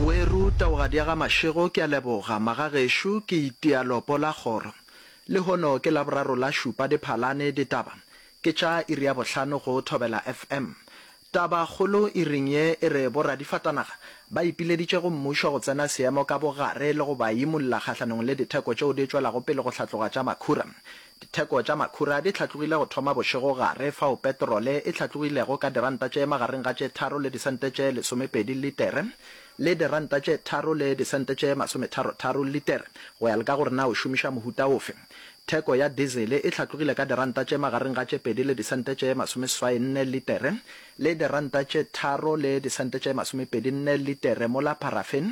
Weru Taogadiagamašego ke a leboga magagešo ke itia lopo la kgoro lehono ke laboraro la šupa diphalane ditaba ke tša iri ya bohlano go Thobela FM taba kgolo iring ye e re bo radifatanaga ba ipileditše go mmušo go tsena seemo ka bogare le go ba imolla kgahlanong le ditheko tšeo di tšwelago pele go hlatloga tša makhura Ditheko tša makhura di hlatlogile go thoma bošego gare fao petrole e hlatlogilego ka diranta tše magareng ga tše tharo le disente tše lesomepedi litere le diranta tše tharo le disente tše masometharotharo litere, go ya le ka gore na o šomiša mohuta ofe. Theko ya dizele e hlatlogile ka diranta tše magareng ga tše pedi le disente tše masomeseswai nne litere le diranta tše tharo le disente tše masomepedi nne litere mola paraffin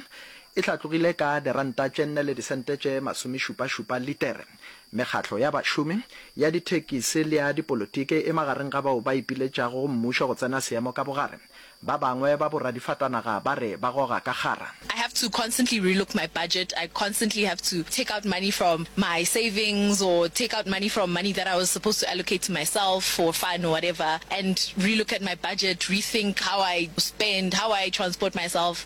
e hlatlogile ka diranta tše nne le disente tše masomešupašupa litere. Mekgatlo ya bašomi, ya dithekisi le ya dipolotiki e magareng ga bao ba ipiletšago go mmušo go tsena seemo ka bogare. Ba bangwe ba boradifatanaga ba re ba goga ka kgara. I have to constantly relook my budget, I constantly have to take out money from my savings or take out money from money that I was supposed to allocate to myself for fun or whatever and relook at my budget, rethink how I spend, how I transport myself.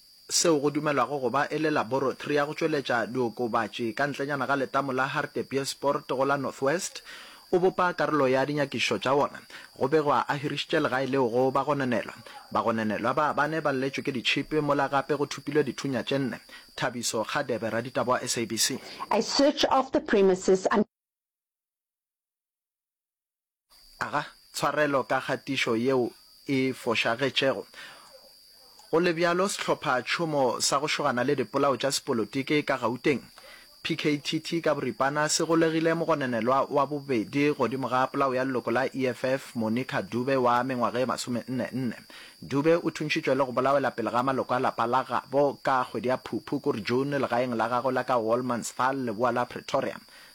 seo go dumelwago go ba e le laboratory ya go tšweletša diokobatši ka ntlenyana ga letamo la Hartbeespoort go la North West, o bopa karolo ya dinyakišišo tša wona. Go begwa a hirišitše legae leo go bagononelwa. Bagononelwa ba bane ba lletšwe ke ditšhipi mola gape go thopilwe dithunya tše nne. Thabiso Kgadebe, raditaba wa SABC. I search of the premises and. Aga tshwarelo ka kgatišo yeo e fošagetšego. Go le bjalo, sehlophatšhomo sa go šogana le dipolao tša sepolotiki ka Gauteng, PKTT ka boripana, se golegile mogononelwa wa bobedi godimo ga polao ya leloko la EFF, Monica Dube wa mengwaga e masomenne-nne. Dube o thuntšitšwe le go bolawela pele ga maloko a lapa la gabo ka kgwedi ya Phuphu, kore June, legaeng la gagwe la ka Wolmansthal, leboa la Pretoria.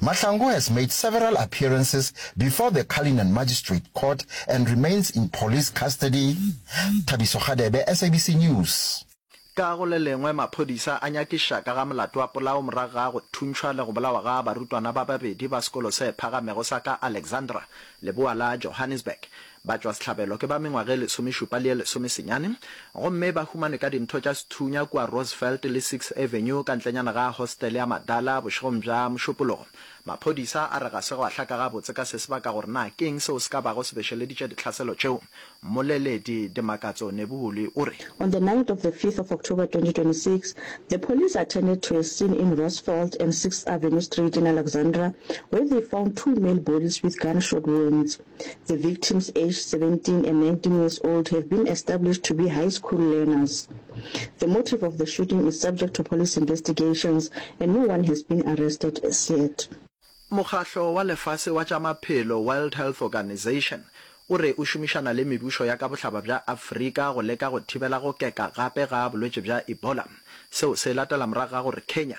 Mahlangu has made several appearances before the Cullinan Magistrate Court and remains in police custody. Thabiso Kgadebe, SABC News. Ka go le lengwe, maphodisa a nyakiša ka ga molato wa polao morago ga go thuntšhwa le go bolawa ga barutwana ba babedi ba sekolo se phagamego sa ka Alexandra, leboa la Johannesburg. Batšwasehlabelo ke ba mengwaga e lesomešupa le e lesomesenyane gomme ba humanwe ka dintho tša sethunya kua Roosevelt le Six Avenue ka ntlenyana ga hostele ya Madala bošegong bja Mošupologo. Maphodisa a re ga se gwa hlaka gabotse ka se se baka gore na ke'ng seo se ka bago se bešeleditše ditlhaselo tšeo. Mmoleledi Dimakatso Nebuholi o re. On the night of the fifth of October 2026, the police attended to a scene in Roosevelt and Sixth Avenue Street in Alexandra where they found two male bodies with gunshot wounds. The victims aged 17 and 19 years old have been established to be high school learners. The motive of the shooting is subject to police investigations and no one has been arrested as yet. Mokgahlo wa Lefase wa tša Maphelo, World Health Organization, o re o šomišana le mebušo ya ka bohlaba bja Afrika go leka go thibela go keka gape ga bolwetši bja Ebola. Seo se latela morago ga gore Kenya